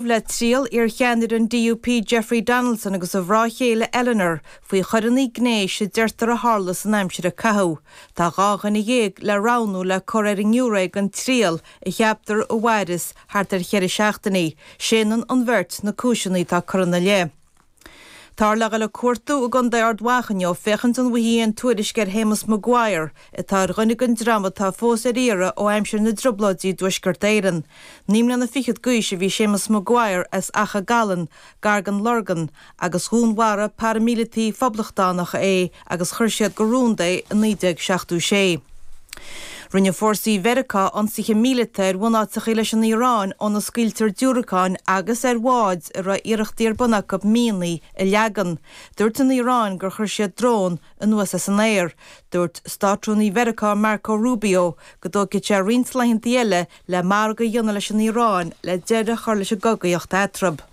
le triail iarcheannaire an DUP Jeffrey Donaldson agus a mhná chéile Eleanor faoi choireanna gnéis a deirtear a tharla san aimsir a caitheadh. Tá dhá dhuine dhéag le roghnú le cur ar an ngiúiré don triail a cheaptar a mhairfeas thart ar cheithre seachtainí. Séanann an bheirt na cúiseanna atá curtha ina leith. Táthar le dhul ag cuartú i gContae Ard Mhacha inniu féachaint an bhfaighfí aon tuairisc ar Shéamus Maguire, atá ar dhuine den dream atá fós ar iarraidh ó aimsir na dTrioblóidí i dTuaisceart Éireann. Naoi mbliana fichead d'aois a bhí Séamus Maguire as Achadh Gallan, gar den Lorgain, agus dhúnmharaigh paraimíleataigh phoblachtánacha é, agus chuir siad go rúnda é i 1976. Rinne fórsaí Mheiriceá ionsaithe míleata ar bhunáiteachaí leis an Iaráin óna scaoiltear diúracáin agus ar bháid a raibh iarrachtaí ar bun acu mianaigh a leagan. Dúirt an Iaráin gur chuir siad drón anuas as an aer. Dúirt Státrúnaí Mheiriceá Marco Rubio go dtógfaidh sé roinnt laethanta eile le margadh a dhéanamh leis an Iaráin le deireadh a chur leis an gcogaíocht eatarthu.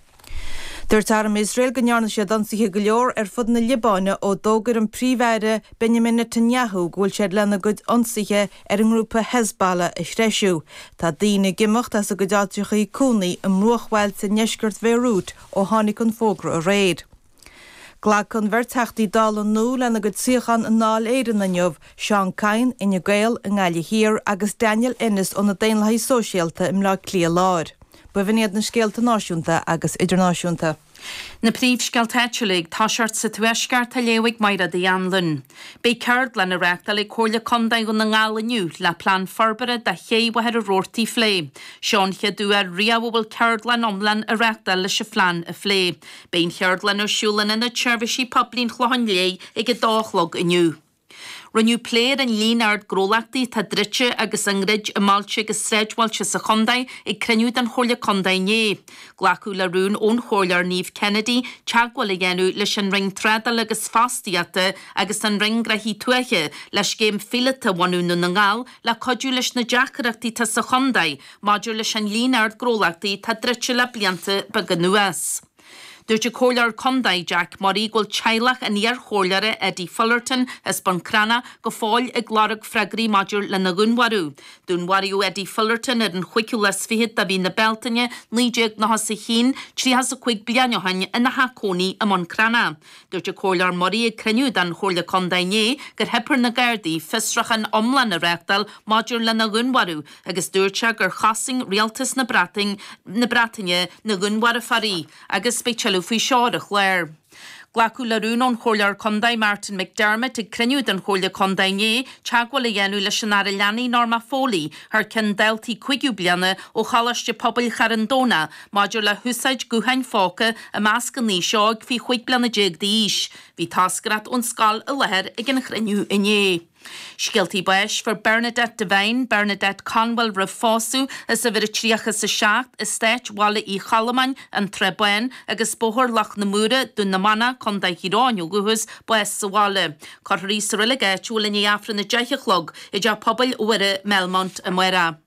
Dúirt arm Iosrael go ndearna siad ionsaithe go leor ar fud na Liobáine ó d'fhógair an Príomh-Aire Benjamin Netanyahu go bhfuil siad lena gcuid ionsaithe ar an ngrúpa Hezbollah a threisiú. Tá daoine ag imeacht as a gcuid áiteachaí cónaí i mbruachbhailte i ndeisceart Bhéiriút ó tháinig an fógra aréir. Glacfaidh an bheirt Theachtaí Dála nua lena gcuid suíochán i nDáil Éireann inniu, Seán Kyne, Fhine Gael, i nGaillimh Thiar agus Daniel Ennis ó na Daonlathaigh Sóisialta i mBleá Cliath Láir. Ba bh'in iad na scéalta náisiúnta agus idirnáisiúnta. Na príomhscéalta áitiúla ag toiseacht sa Tuaisceart á léamh ag Máire Uí Anluain. Beidh ceardlann á reáchtáil ag Comhairle Contae Dhún na nGall inniu le plean forbartha do ché Mhachaire Rabhartaigh a phlé. Seo an chéad uair riamh a bhfuil ceardlann iomlán á reáchtáil leis an phlean a phlé. Beidh an cheardlann ar siúl in Ionad Seirbhísí Poiblí an Chlocháin Léith ag 2 a chlog inniu. Rinneadh plé ar an líon ard gnólachtaí atá druidte agus á ndruid i mbailte agus sráidbhailte sa chontae ag cruinniú den Chomhairle Contae inné. Glacadh le rún ón Chomhairleoir Niamh Kennedy teagmháil a dhéanamh leis an Roinn Trádála agus Fostaíochta agus an Roinn Gnóthaí Tuaithe le scéim phíolótach a bhunú i nDún na nGall le cuidiú leis na deacaireachtaí atá sa chontae Maidir leis an líon ard gnólachtaí atá druidte le blianta beaga anuas, dúirt an Comhairleoir Contae, Jack Murray, go bhfuil teaghlach an iarchomhairleora, Eddie Fullerton, as Bun Cranncha, go fóill ag lorg freagraí maidir lena dhúnmharú. Dúnmharaíodh Eddie Fullerton ar an chúigiú lá is fichead de mhí na Bealtaine, 1991, tríocha is a cúig bliain ó shin, ina theach cónaí i mBun Cranncha. Dúirt an Comhairleoir Murray ag cruinniú den Chomhairle Contae inné gur theip ar na Gardaí fiosruchán iomlán a reáchtáil maidir lena dhúnmharú agus dúirt sé gur chosain Rialtas na Breataine na Breataine na dúnmharfóirí agus beidh tuilleadh faoi seo ar an chlár. Glacadh le rún ón Chomhairleoir Contae Martin McDermott ag cruinniú den Chomhairle Contae inné teagmháil a dhéanamh leis an Aire Leanaí Norma Foley thar ceann daltaí 5ú bliana ó Choláiste Pobail Charn Domhnach Maidir le húsáid gutháin phóca i measc an aois óig faoi chúig bliana déag d'aois, bhí toscaireacht ón scoil i láthair ag an chruinniú inné. Scéaltaí báis Fuair Bernadette Devine, Bernadette Conwell roimh phósadh, as uimhir a tríocha is a seacht, Eastát Bhaile Uí Cholmáin, An Srath Bán agus Bóthar Loch na Móra, Dún na Manach, Co. Thír Eoghain ó dhúchas, bás sa bhaile. Cuirfear í sa reilig áitiúil i ndiaidh Aifreann a deich a chlog i dTeach Pobail Mhuire, Melmont, amárach.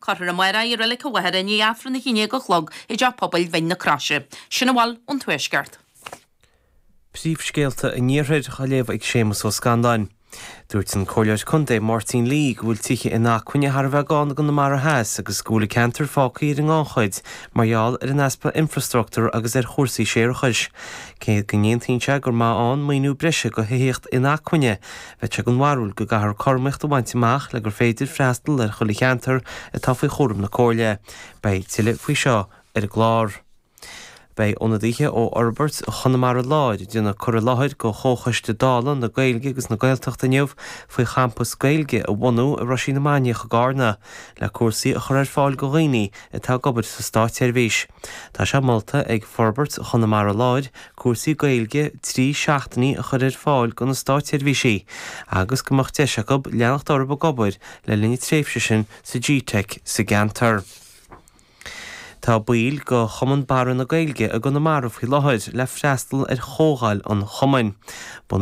Cuirfear í amárach i Reilig an Mhachaire i ndiaidh Aifreann a haon déag a chlog i dTeach Pobail Mhín na Croise, sin a bhfuil ón Tuaisceart. Príomhscéalta an Iarthair á léamh ag Séamus Ó Scanláin. Dúirt an Comhairleoir Contae Máirtín Lee go bhfuil tithe inacmhainne thar a bheith gann i gConamara Theas agus go bhfuil an ceantar fágtha ar an ngannchuid mar gheall ar an easpa infrastruchtúr agus ar chúrsaí séarachais. Cé go n-aontaíonn sé gur maith ann maoiniú breise go thithíocht inacmhainne, Bheadh sé den bharúil go gcaithfear cothromaíocht a bhaint amach le gur féidir freastal ar chuile cheantar atá faoi chúram na Comhairle. Beidh tuilleadh faoi seo ar an gclár. Beidh ionadaithe ó Fhorbairt Chonamara Láir ag déanamh cur i láthair go Chomhchoiste Dála na Gaeilge agus na Gaeltachta inniu faoi champas Gaeilge a bhunú i Roisín na Mainiach i gCarna le cúrsaí a chur ar fáil go dhaoine atá ag obair sa Státseirbhís. Tá sé molta ag Forbairt Chonamara Láir cúrsaí Gaeilge trí seachtainí a chur ar fáil do na státseirbhísigh agus go mbeadh deis acu leanacht orthu ag obair le linn a tréimhse sin sa GTeic sa gceantar. Tá baill de Chumann Barra na Gaeilge i gConamara faoi láthair le freastal ar chomhdháil an Chumainn.